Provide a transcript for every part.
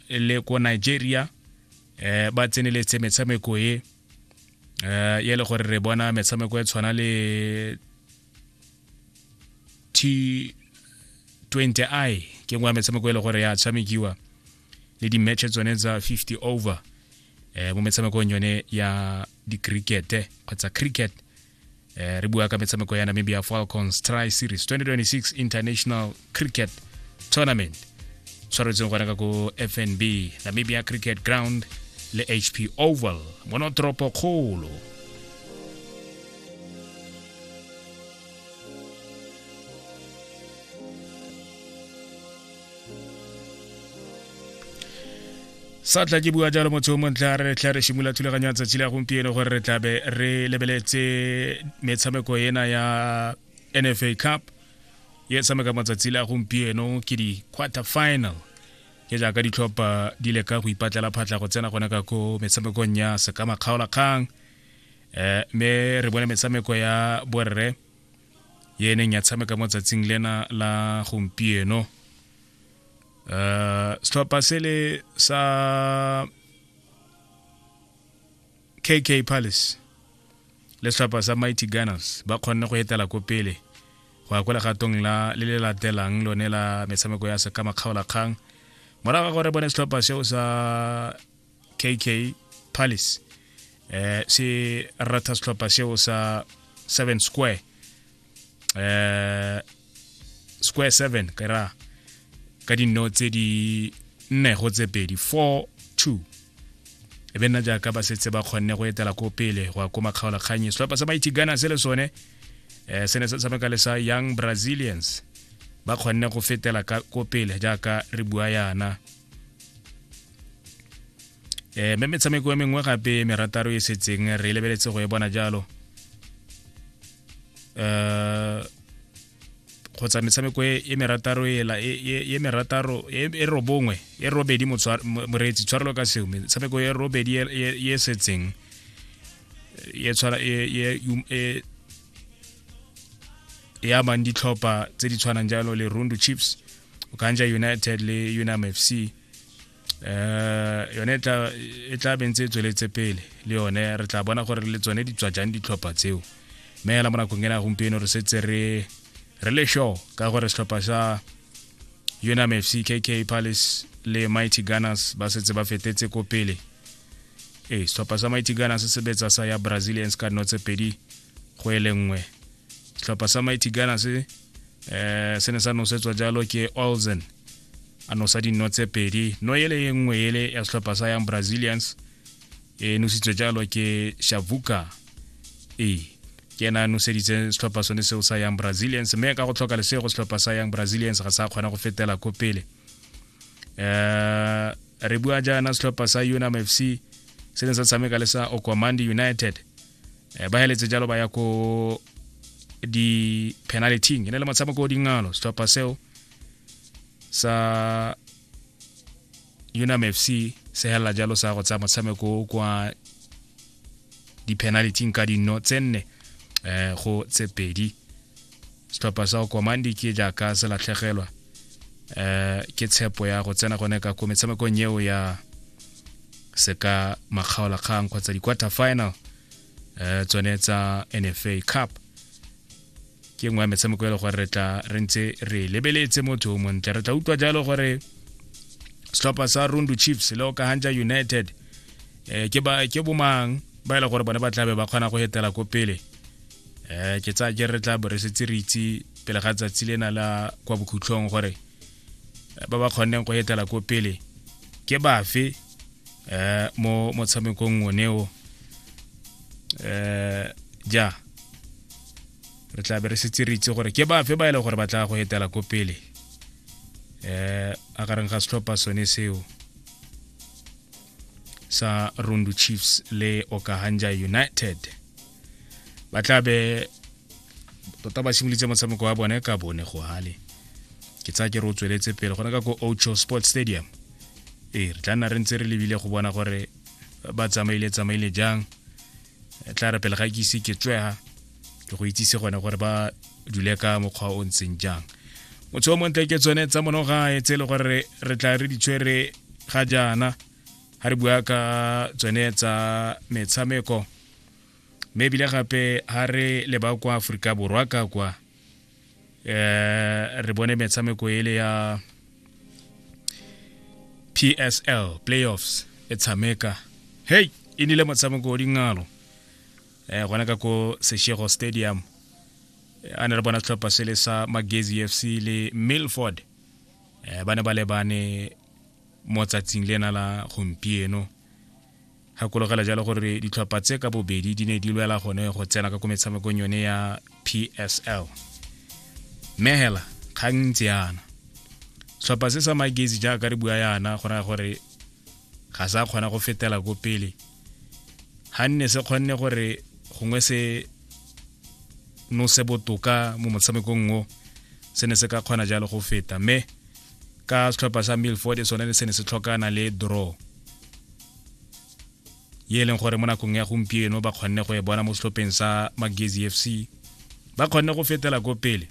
le ko nigeria um ba tseneletse metshameko e um e le gore re bona metshameko e tshwana le t 20 i ke nngwe ya metshameko e le gore ya tshamekiwa le di-matche tsone tsa 50 over um mo metshamekong yone ya di-cricket kgotsa cricket eh, re bua ka metshameko ya namibia falcons tri series 2026 international cricket tournament tshwaretseng gona ka ko fnb namibia cricket ground le hp oval mono toropo kgolo sa tla ke bua jalo motho o montle a re tla re shimola thulaganyo ya tsatsi la gompieno gore re tlabe re lebeletse metshameko ena ya nfa cup ye tshameka matsatsi la gompieno ke di-quarter final ke jaaka ditlhopha di leka go ipatlela phatlha go tsena gone ka ko metshamekong ya sekamakgaolakgang um eh, mme re bone metshameko ya borre ye e neng ya tshameka mo tsatsing lena la gompieno uh, setlhopha sele sa kk palace le setlhopha sa mighty gunners ba kgonne go etela ko pele go ya kwa legatong la le le latelang lone la metshameko ya sekamakgaolakgang morago ga gore bone setlhopha seo sa kk palace eh se rata setlhopha seo sa seven square eh square seven ka ra ka dinno tse di nne go tse pedi four two e be nna jaaka ba setse ba kgonne go etela ko pele go ya ko makgaolakganye setlhopha sa mighty gana se le sone um se ne se tshameka le sa young brazilians ba kgonne go fetela ko pele jaaka re bua yana eh me metshameko e mengwe gape merataro e setseng re lebeletse go e bona jalo eh kgotsa metshameko e, e merataro ela e, e, e merataro e robongwe e robedi moreetsi tshwarelo ka seo metshameko e robedi e setseng e tshwana e e amang ditlhopha tse di tshwanang jalo le rundu chips okanja united le unam f c eh yone e tla e tla bentse e tsweletse pele le yone re tla bona gore le tsone di tswa jang ditlhopha tseo mme hela mo nakong ena gompieno re setse re re le show ka gore setlhopha sa unam fc kk palace le mighty gunners ba setse ba fetetse ko pele ee setlhopha sa mighty gunners se sebetsa sa ya brazilians ka dino tse pedi go e le nngwe setlhopha sa mighty gunners eh se ne sa nosetswa jalo ke olsen a nosa dino tse pedi no ele e nngwe ele ya setlhopha sa yang brazilians e nositswe jalo ke shavuka e ke ena a noseditse setlhopha sone seo sa yang brazilians mme ka go tlhoka lesego setlhopha sa yang brazilians ga sa kgona go fetela ko pele um re bua jaana setlhopha sa unam fc se ne sa tshameka le sa okwamandi united um ba heletse jalo ba ya ko di-penaltyng e ne le motshameko o dingalo setlhopha seo sa unam f c se helela jalo sa go tsaya motshameko kwa di-penality ka dino tse nne um go tse pedi setlhopha sa komandi ke jaaka se latlhegelwa um ke tshepo ya go tsena gone ka ko metshamekong eo ya se ka makgaolakgang kgotsa di-quarter final um tsone tsa nfa cup ke nngwe ya metshameko e le gore re tla re ntse re lebeletse motho o montle re tla utlwa jalo gore setlhopha sa rundu chiefs le okahanja united um ke ba ke bomang ba e le gore bone ba tlabe ba kgona go etela ko pele um ke tsaya ke re tla bo re setse re itse pele ga tsatsi lena la kwa bokhutlhong gore ba ba kgonneng go etela ko pele ke bafe um mo motshamekong oneo um ja re tla be re setse re itse gore ke bafe ba e leng gore ba tla go etela ko pele um a gareng ga setlhopha sone seo sa rundu chiefs le okahanja united ba tla be tota ba simolitse motshameko wa bone ka bone go hale ke tsaya ke re o tsweletse pele gone ka ko ocho sports stadium ee re tla nna re ntse re lebile go bona gore ba tsamaile tsamaile jang e tla re pele ga ke ise ke tswega ke go itsise gone gore ba dule ka mokgwa o ntseng jang motho o montle ke tsone tsa monogae tse e le gore re tla re ditshwere ga jaana ga re bua ka tsone tsa metshameko mme ebile gape ga re leba kwa aforika borwa ka kwa eh re bone metshameko ele ya PSL playoffs e tshameka hey e nile motshameko o dingalo eh gona ka ko Seshego Stadium eh, a ne re bona tlhopha se le sa Magezi FC le Milford eh ba ne ba lebane mo tsatsing lena la gompieno Gakologela jalo gore ditlhopha tse ka bobedi di ne di lwela gone go tsena ka ko metshamekong yone ya psl mme hela kgang ntse yana setlhopha se sa magezi jaaka re bua yana go raya gore ga sa kgona go fetela ko pele ga nne se kgonne gore gongwe se nose botoka mo motshamekong o se ne se ka kgona jalo go feta mme ka setlhopha sa milford e sone se ne se tlhokana le draw ye e leng gore mo nakong ya gompieno ba kgonne go e bona mo setlhopheng sa magezi f c ba kgonne go fetela ko pele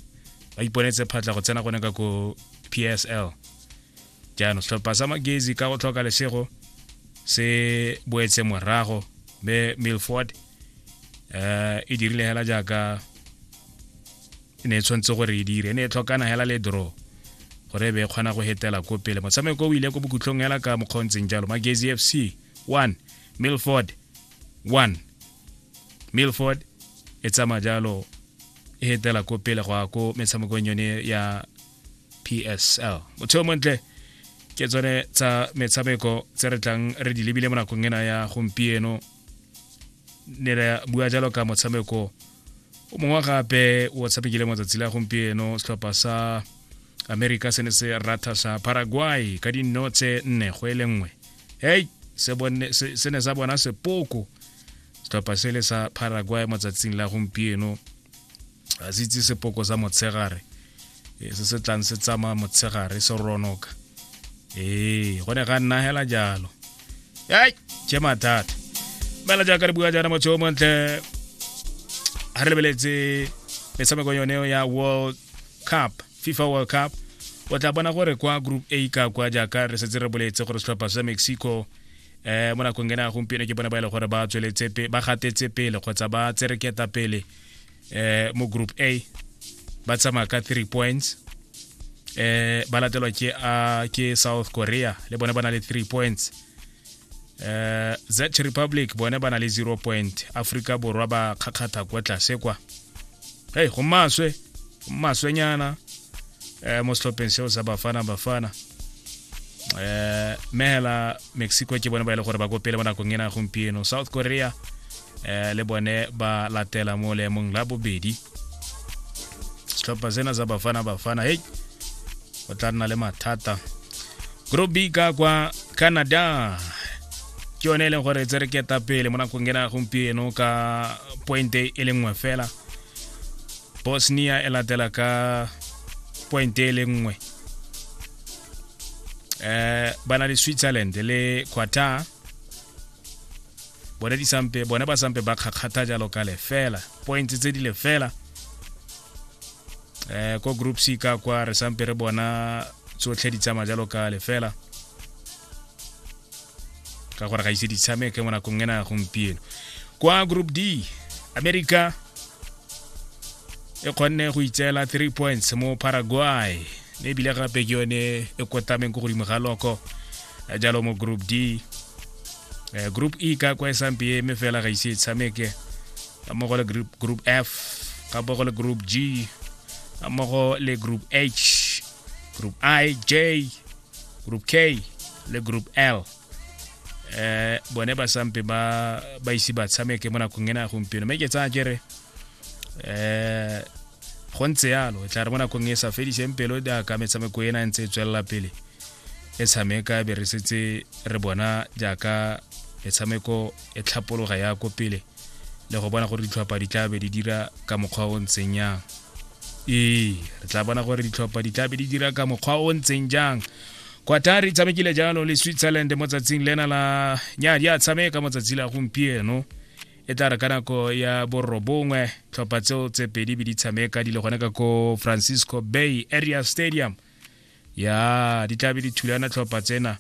ba iponetse phatla go tsena gone ka ko p s l jaanong setlhopha sa magezi ka go tlhoka lesego se boetse morago mme milford um e dirile hela jaaka e ne e tshwanetse gore e dire e ne e tlhokana hela le draw gore e be e kgona go hetela ko pele motshameko o ile ko bokhutlhong hela ka mokgwa o ntseng jalo magezi f c 1 milford 1 milford e tsamaya jalo e hetela ko pele go ya ko metshamekong yone ya psl motho yo montle ke tsone tsa metshameko tse re tlang re di lebile mo nakong ena ya gompieno ne re bua jalo ka motshameko o mongwe gape o tshamekile matsatsi la gompieno setlhopha sa america se ne se ratha sa paraguay ka dinno tse nne go e le nngwe hei se ne sa bona sepoko setlhopha se le sa paraguay matsatsing la gompieno a se itse sepoko sa motshegare eh, se se tlang se tsamaya motshegare se ronoka ee go ne ga nna hela jalo ai ke mathata mela jaaka re bua jaana motho o montle ga re lebeletse metshameko yone ya world cup fifa world cup o tla bona gore kwa group a ka kwa jaaka re setse re boletse gore setlhopha sa mexico eh mo nakong ena gompieno ke bona ba e le gore ba tsweletse ba gatetse pele kgotsa ba tsereketa pele eh mo group A ba tsamaya ka 3 points eh ba latelwa ke a ke South Korea le bone ba na le 3 points eh Czech Republic bone ba na le 0 point Africa borwa ba kgakgatha kwa tlase kwa hey go maswe maswenyana eh mo setlhopheng seo sa bafana bafana eh mela mexico ke bone ba ile e gore ba kopele mo nakong ena gompieno south korea eh, le bone ba latela mo leemong la bobedi setlhopha sena sa bafana bafana hei o tla nna le mathata group b ka kwa canada ke yone e leng gore tse re keta pele mo nakong ena gompieno ka pointe e le nngwe fela bosnia e latela ka pointe e le nngwe um ba na le switzerland le qatar bone di sampe bone ba sampe ba kgakgatha jalo ka lefela points tse di lefela eh ko group C ka kwa re sampe re bona tsotlhe di tsama jalo ka lefela ka gore ga ise di tshameke mo nakong ena ya gompieno kwa group D America e kgonne go itseela 3 points mo Paraguay mme ebile gape ke yone e kotameng ko godimo ga loko jalo mo group D eh, group e ka kwa e samp e mme fela ga ise e tshameke ka mo go le group f ka bo go le group g ka mo go le group h group i j group k le group l eh bone ba sampe ba ba ise ba tshameke mo nakong ena gompieno mme ke tsaya kere eh go ntse yalo tla re mo nakong e sa fediseng pelo di a ka metshameko ena e ntse e tswelela pele e tshameka be re setse re bona jaaka metshameko e tlhapologa ya ko pele le go bona gore ditlhopha di tla be di dira ka mokgwa o ntseng yang ee re tla bona gore ditlhopha di tla be di dira ka mokgwa o ntseng jang qatar e tshamekile jalo le switzerland mo tsatsing lena la nya di a tshameka mo tsatsi la gompieno e tla re ka nako ya borobongwe tlhopha tseo tse pedi be di tshameka di le gone ka ko francisco bay area stadium ya di tlabe di thulana tlhopha tsena